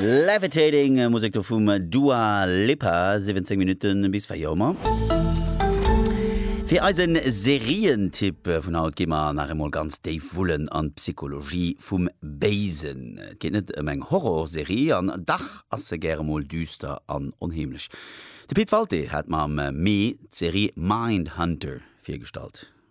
Levitating, Musek do vum Dua Lipa, 17 Minutte bis 4 Auer. Fir eisen Serientipp vun haut gi mer nach emol ganz déif wullen an d'Psychologie vum Béisen. Et geet net ëm eng Horrorserie, an dach ass se gäre mol düster an onheemlech. De Pit Walté hat mer am Mee d'Serie Mindhunter virgestallt.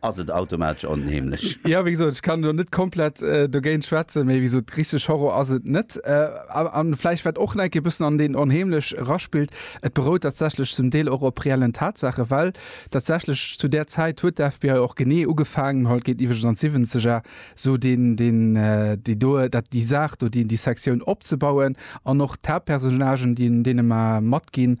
ass et automatesch onheemlech. Jo, wéi gesot, ech kann elo net komplett dogéint schwätzen, mee wéi gesot, richteg Horror ass et net. A vläicht wat och enkeké e bëssen an deen onheemlech eraspillt, et berout tatsächlech zum Deel och op reellen Tatsaache, well tatsächlech zu där Zäit huet d'FBI och genee ugefaangen, haut geet iwwregens an d'Siwwenzeger, esou deen, deen, déi do, dat, déi Saach do, déi, déi Sektioun opzebauen an och d'Haaptpersonnagen, déi deene mer matginn.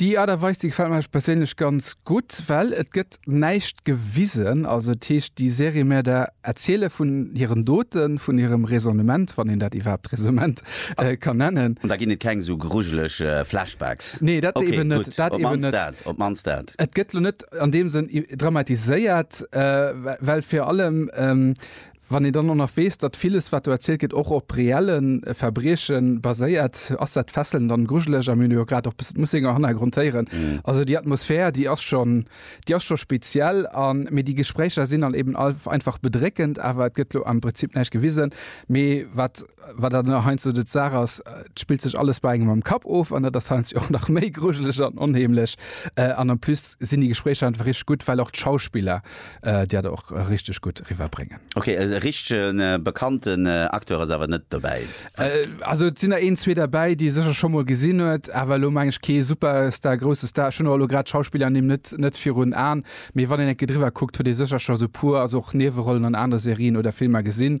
Déi Art a Weis, déi gefällt mer perséinlech ganz gutt, well et gëtt näischt gewisen. Also et heescht, déi Serie mär der erziele vun hiren Doten, vun hirem Raisonnement, wann een dat iwwerhaapt Raisonnement ka nennen. An da ginn et keng esou grujeleg Flashbacks? Nee, dat eben net. Dat eben net. Op d'mannst dat. Et gëtt elo net an deem Sënn dramatiséiert, well fir allem, Wann een dann och nach weess, datt villes, wat do erzielt gëtt, och op reelle Verbrieche baséiert, ass dat fesselnd an grujeleg. A mir hunn jo grad och bëssen d'Mussinger Hannergrond héieren. Also déi Atmosphär, déi ass schon, déi ass scho speziell. A mee déi Gespréicher sinn dann eben einfach bedréckend. Awer et gëtt elo am Prinzip näischt gewisen. Mee wat, wat dann elo heiansdo de d'Saach ass, et spillt sech alles bei engem am Kapp of. An dat ass heiansdo och nach méi grujeleg an onheemlech. An en plus sinn déi Gespréicher einfach richteg gutt, well och d'Schauspiller, Dir hat och richteg gutt riwwer bréngen. Ok, e richtegen bekannten Acteur ass awer net dobäi? Also et sinn der een zwee derbäi déi e sécher scho mol gesinn huet, awer elo meng ech kee Superstar, grousse Star. Ech hunn och elo grad d'Schauspillernimm net net virun Aen, mee wann een enke driwwer kuckt huet ee sécher scho sou puer, also och Niewerollen an anere Serien oder Filmer gesinn.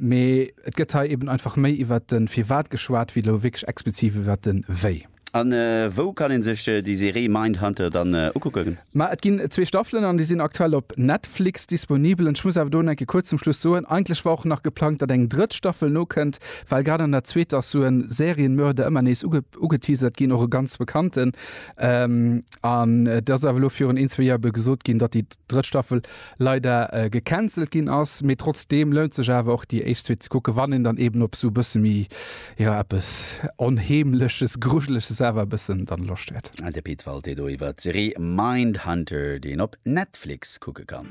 Mee et gëtt hei eben einfach méi iwwert de Firwat geschwat, wéi elo wierklech expliziv iwwert de Wéi. A wou kann een sech déi Serie Mindhunter dann ukucken? Ma et ginn zwee Staffelen an déi sinn aktuell op Netflix disponibel. An ech muss awer do enke kuerz zum Schluss soen, eigentlech war och nach geplangt, datt eng drëtt Staffel nokënnt, well grad an der zweeter ass sou e Serienmörder ëmmer nees ugeteasert ginn, och e ganz bekannten. An et ass awer elo virun een, zwee Joer ebe gesot ginn, datt déi drëtt Staffel leider gecancelt ginn ass, mee trotzdeem lount sech awer och déi éischt Suite ze kucken, wann een dann eben op esou e bësse méi, jo eppes Onheemleches, Grujeleches awer e bëssen dann Loscht huet. De Pit Walté do iwwert d'Serie Mindhunter, déi een op Netflix kucke kann.